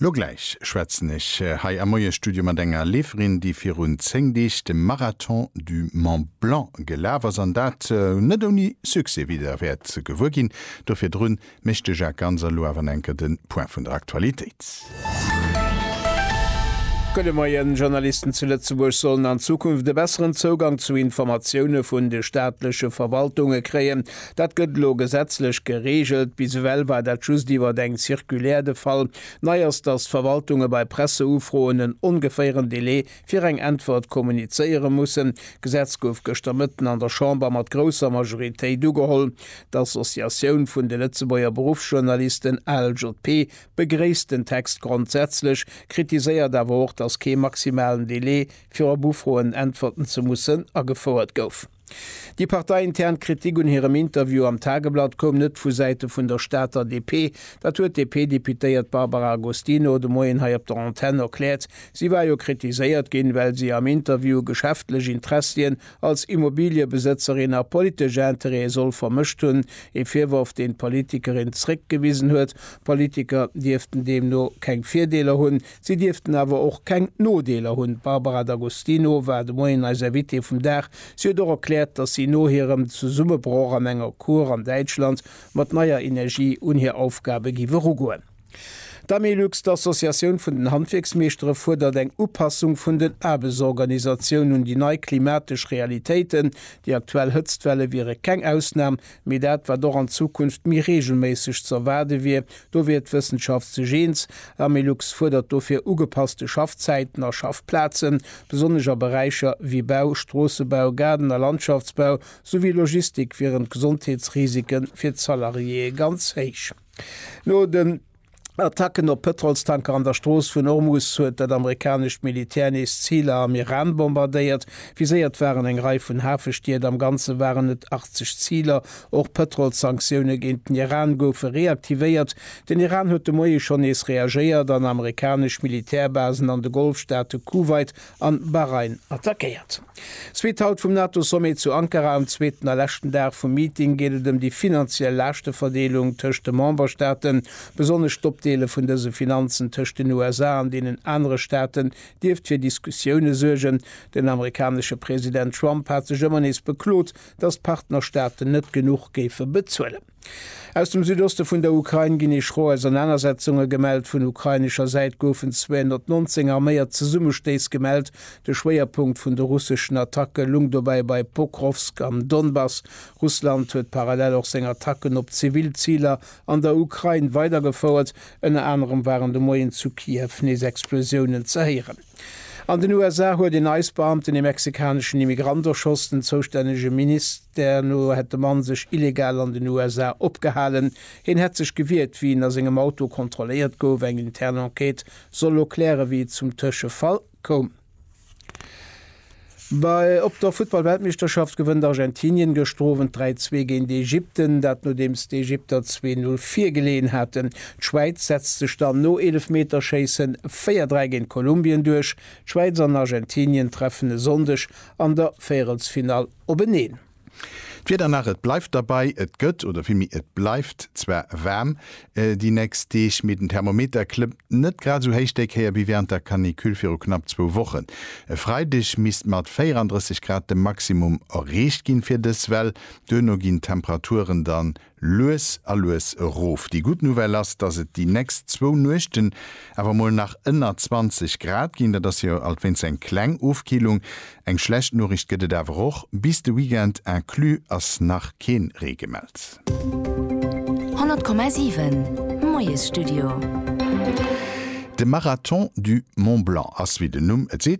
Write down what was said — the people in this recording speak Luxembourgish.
Lo gläich schwätzen ech hei am Moiesstudio mat enger Leeferin, déi virun 10 Deeg de Marathon du Mont Blanc gelaf ass an dat net ouni Succès, wéi Der wäert gewuer ginn. Do virdrun mécht de Jacques Ganz elo awer nach enker de Point vun der Aktualitéit. Gudde Moien. Journalisten zu Lëtzebuerg sollen an Zukunft e besseren Zougang zu Informatioune vun de staatleche Verwaltunge kréien. Dat gëtt elo gesetzlech gereegelt. Bis ewell war dat just iwwer eng Circulaire de Fall. Nei ass, datt d'Verwaltunge bei Presseufroen en ongeféieren Delai fir eng Äntwert kommunizéiere mussen. D'Gesetz gouf gëschter Mëtten an der Chamber mat grousser Majoritéit ugeholl. D'Associatioun vun de Lëtzebuerger Beruffsjournalisten, ALJP, begréisst den Text grondsätzlech, kritiséiert awer och, datt kee maximalen Delai, fir op Ufroen äntwerten ze mussen, agefouert gouf. Déi parteiintern Kritik un hirem Interview am Tageblatt koum net vu Säite vun der Stater DP. Dat huet d'DP-Deputéiert Barbara Agostino de Moien hei op der Antenn erkläert. Si war jo kritiséiert ginn, well si am Interview geschäftlech Interessien als Immobiliëbesëtzerin a politesch Interêtë soll vermëscht hunn. Ee Virworf, deen d'Politikerin zréckgewisen huet. Politiker dierften deemno keng Virdeeler hunn. Si dierften awer och keng Nodeeler hunn. D'Barbara D'Agostino war de Moien eis Invitée vum Dag. Si huet och erkläert, datt si no hirem Zesummebroch an enger Kur an Däitschland mat neier Energie un hir Aufgabe giff erugoen. D'Amilux, d'Associatioun vun den Handwierksmeeschtere, fuerdert eng Upassung vun den Aarbechtsorganisatioun un déi nei klimatesch Realitéiten. Déi aktuell Hëtztwelle wiere keng Ausnam, mee dat wat och an Zukunft méi reegelméisseg ze erwaarde wier. Do wier d'Wëssenschaft sech eens, L'Amelux fuerdert dofir ugepasste Schaffzäiten a Schaffplazen, besonnesch a Beräicher wéi Bau, Stroossebau, Gaarden a Landschaftsbau souwéi Logistik wieren d'Gesondheetsrisike fir d'Salariéeë ganz héich. No den. Attacken op Pëtrolstanker an der Strooss vun Ormus huet dat amerikanescht Militär nees Ziler am Iran bombardéiert. Viséiert waren eng Rei vun Hafestied, am Ganze waren et 80 Ziler. Och Pëtrolssanktioune géint den Iran goufe reaktivéiert. Den Iran huet de Moie schonn nees reagéiert an amerikanesch Militärbasen an de Golfstaate Kuwait an Bahrain attackéiert. Zweet Halt vum NATO-Sommet zu Ankara, am zweeten a leschten Dag vum Meeting geet et ëm déi finanziell Laaschteverdeelung tëscht de Memberstaaten. Besonnesch d'Opdeele vun dëse Finanzen tëscht den USA an deenen anere Staaten dierft fir Diskussioune suergen. Den amerikanesche President Trump hat sech ëmmer nees beklot, datt d'Partnerstaaten net genuch géife bezuelen. Aus dem Südoste vun der Ukrain ginn ee schro Ausernanersetzunge gemellt. Vun ukrainescher Säit goufen 219 arméiert Zesummestéiss gemellt. De Schwéierpunkt vun de russeschen Attacke lung dobäi bei Pokrovsk am Donbass. Russland huet parallel och seng Attacken op zivil Ziler an der Ukrain weidergefouert. Ënner anerem waren de Moien zu Kiew nees Explosiounen ze héieren. An den USA huet een ICE-Beamten ee mexikaneschen Immigrant erschoss. Den zoustännege Ministère no hätt de Mann sech illegal an den USA opgehalen. Hien hätt sech gewiert, wéi en a sengem Auto kontrolléiert gouf. Eng intern Enquête soll elo klären, wéi et zum Tëschefall koum. Bei op der Futtballweltmeeschterschaft gewënnt Argentinien gëschter Owend 3, 2 géint Ägypten, dat nodeems d'Ägypter zwee, null virgeleeën haten. D'Schwäiz setzt sech dann no Eelefmeterschéisse véier, dräi géint Kolumbien duerch. D'Schwäiz an Argentinien treffen e Sonndeg an der Véierelsfinall openeen. D'Wieder nach, et bleift derbei, et gëtt, oder villméi et bleift zwar waarm déi nächst Deeg, mee den Thermometer klëmmt net grad esou héich déi Kéier wéi wärend der Canicule viru knapp zwou Wochen. E Freideg misst mat 34 Grad de Maximum erreecht ginn fir dës Well, duerno ginn d'Temperaturen dann lues a lues erof. Déi gutt Nouvelle ass, dass et déi nächst zwou Nuechten awer mol nach ënner 20 Grad ginn. Dat ass jo alt wéinst eng kleng Ofkillung. Eng schlecht Noriicht gëtt et awer och, bis de Weekend inclus ass nach keen Ree gemellt. 100,7 Moiesstudio. De Marathon du Mont Blanc ass, wéi den Numm et seet,